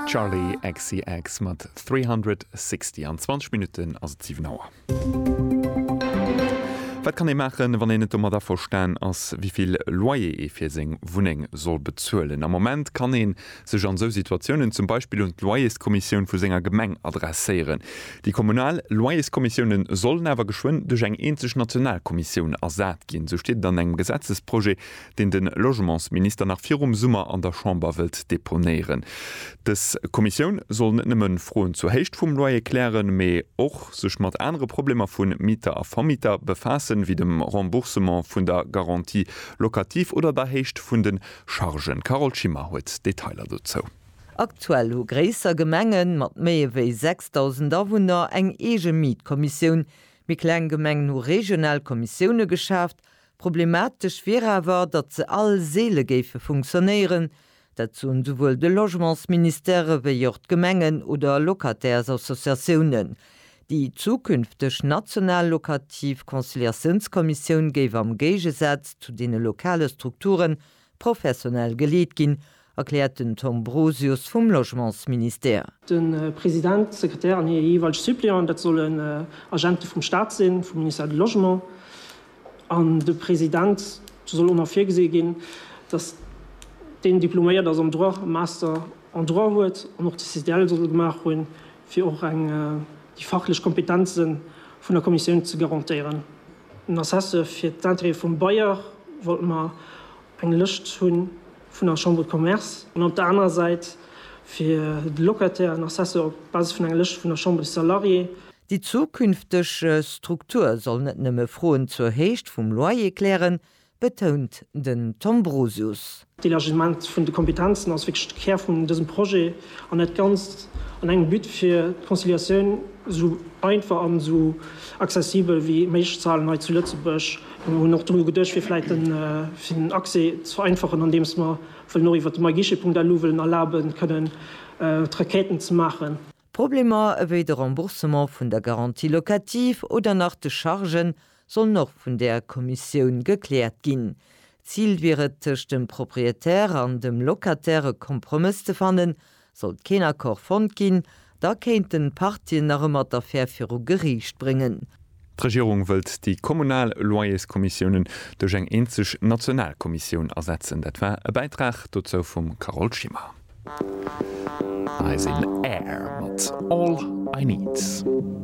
Charli XCX mat 360 An 20 Minutten ass et 7 Auer. Wat kann ee maachen, wann een net domat averstan ass, wéi vill Loyer ee fir seng Wunneng soll bezuelen? Am Moment kann ee sech an esou Situatiounen zum Beispill un d'Loyerskommissioun vu senger Gemeng adresséieren. Déi kommunal Loyerskommissiounen sollen awer geschwënn duerch eng eenzeg national Kommissioun ersat ginn, esou steet et an engem Gesetzesprojet, deen de Logementsminister nach virum Summer an der Chamber wëllt deponéieren. Dës Kommissioun soll net nëmme Froen zur Héicht vum Loyer klären, mee och sech mat anere Problemer vu Mieter a Vermieter befaassen, wéi dem Remboursement vun der Garantie locative oder der Héicht vun de Chargen. D'Carole Schimmer huet d'Detailer dozou. Aktuell hu gréisser Gemenge mat méi ewéi 6.000 Awunner eng eege Mietkommissioun. Méi kleng Gemengen hu regional Kommissioune geschaaft, Problematesch wier awer, datt se all seele géife funktionéieren. Dat soen souwuel de Logementsministère wéi och d'Gemengen oder Locataires-Associatiounen. Déi zukünfteg national lokativ Conciliatiounskommissioun géif am Géigesaz zu deene lokale Strukturen Professionell geleet ginn, erkläert den Tom Brosius vum Logementsministère. De President, d'Sekretär an hir jeeweilge Suppleanten, dat sollen Agente vum Staat sinn, vum Ministère du Logement. An de President, do soll och nach virgesi ginn, datt deen diploméiert ass am Droit, e Master en Droit huet an och de CDL soll gemaach hunn. fir och eng déi fachlech Kompetenze vun der Kommissioun ze garantéieren. Den Assessë fir d'Intérêtë vum Bailleur wollte mer eng Lëscht hu vun der Chambre de Commerce an op der anerer Säit fir de Locataire en Assessë op Basis vun enger Lëscht vun der Chambre des Salariés. Déi zukünfteg Struktur soll net nëmme Froen zur Héicht vum Loyer klären, betount den Tom Brosius. D'Elargissement vun de Kompetenzen ass wierklech de Kär vun dësem Projet an dat Ganzt an engem But fir d'Conciliatioun esou einfach an esou accessibel wéi méiglech ze halen hei zu Lëtzebuerg. Mir hunn och dru geduecht fir vläicht fir den Accès ze vereinfachen andeems mer wëllen och iwwert de myguichet.lu wëllen erlabe kënnen d'Requêten ze maachen. Problemer ewéi de Remboursement vun der Garantie locative oder nach de Chargen sollen och vun där Kommissioun gekläert ginn. Zil wier et, tëscht dem Proprietär an dem Locataire e Kompromëss ze fannen. Sollt keen Accord fonnt ginn, da kéinten d'Partien nach ëmmer d'Affär viru Geriicht bréngen. D'Regierung wëllt déi kommunal Loyerskommissiounen duerch eng eenzeg national Kommissioun ersetzen. Dat war e Bäitrag dozou vum Carole Schimmer. Hei sinn Air mat All I Need.